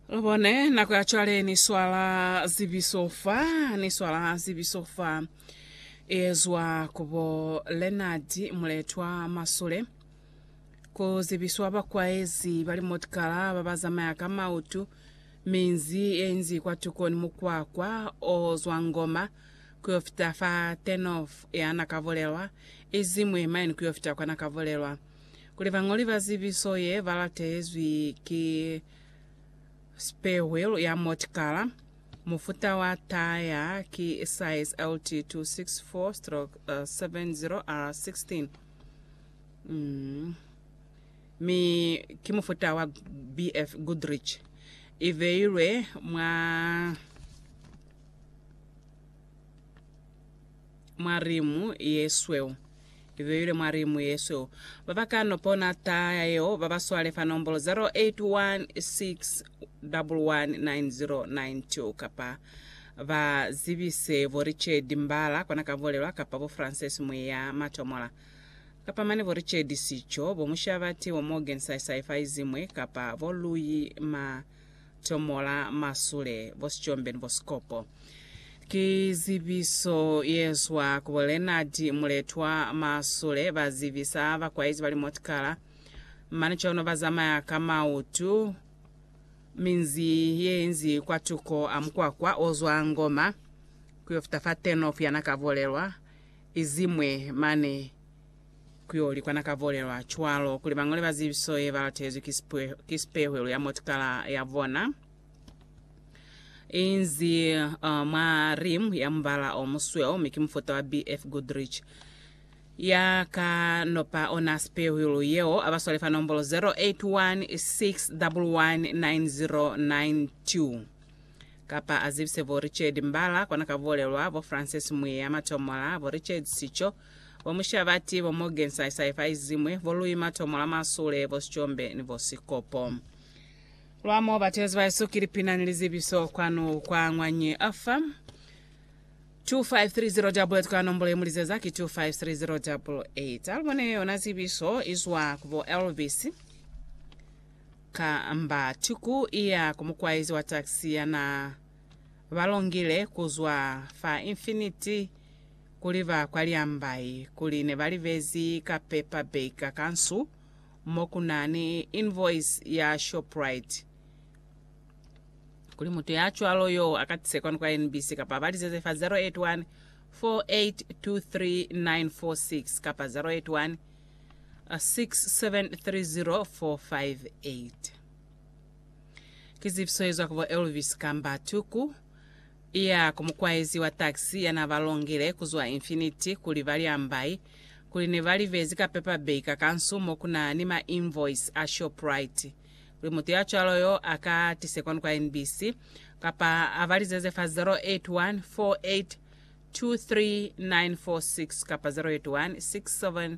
Lu bone nako ya cwale ni swala zibiso fa, ni swala zibiso fa. Ezwa ku bo Leonard Muletwa Masule. Ku zibiswa bakwaezi ba limotikala ba ba zamaya ka mautu, minzi ye inzi kwatuko ni mukwakwa o zwa Ngoma ku yo fita fa Turnoff ya Nakavolelwa, izimwi mine ku yo fita kwa Nakavolelwa. kuli bañoli ba zibiso ye ba latezwi ki spare wheel ya motikala mufuta wa taya ki size LT264-70R16 mm, mi ki mufuta wa BF Goodrich. I beilwe mwa mwa limu yesweu. Ibeilwe mwa limu yesweu. Baba ka no pona taa ya yeo baba swale fa nombolo 0816119092 kapa ba zibise bo Richard Mbala kona ka Volelwa kapa bo Frances Mwiya Matomola kapa mane bo Richard Sicho, bo Mushabati, bo Morgan Saisai Faizimwe kapa bo Luyi Ma Tomola, masule, bosicombe ni bosikopo. Ki zibiso yezwa ku bo Leonard Muletwa. Masule bazibisa bakwaezi bali motikala, mane cono bazamaya ka mautu minzi yeinzi kwatuko a mukwakwa ozwa Ngoma kuyo fita fa Turnoff yana kabolelwa, izimwe mane. Ku yo likwana ka bolelwa cwalo kuli bañole ba zibiso ye ba latezwi ki sipwe- ki sipehwelo ya motikala ya bona inzi uh, mwa rim ya mubala o musweu mi ki mufuta wa BF Goodrich. Ya ka no pa ona sipehwelo yeo a ba swale fa nombolo 081 611 9092 kapa a zibise bo Richard Mbala kwana ka bolelwa bo Francis Mwiya Matomola, bo Richard Sicho, Bo Mushabati, bo Morgan Saisai fa izimwi, bo Louis Matomo la Masule, bo Sicombe ni bo Sikopo. Lwa mo batelezi ba Yesu ki lipina ni lizibiso kwanu kwa Ngwanyi FM. 25308 kwa nombolo ye mulizeza ki 25308 alibone yona zibiso izwa ku bo Elvis ka mba tuku iya ku mukwaizi wa taxi yana balongile kuzwa fa Infinity kuli ba kwa Liambai kuli ne ba libezi ka paper baker ka nsu mo ku na ni invoice ya Shoprite, kuli mutu ya cwalo yo a ka tise kwanu kwa NBC kapa ba lizeze fa 081 4823946 kapa 081 6730458. Ki zipiso ye zwa ku bo Elvis kamba Tuku, iya ku mukwaezi wa taxi ya na ba longile ku zwa Infinity kuli ba li ambai, kuli ne ba li bezi ka paper bag ka kansu mo ku na ni ma invoice a Shoprite, kuli mutu ya cwalo yo a ka tise kwanu kwa NBC, kapa a balizeze fa 081 48 23946 kapa 081 67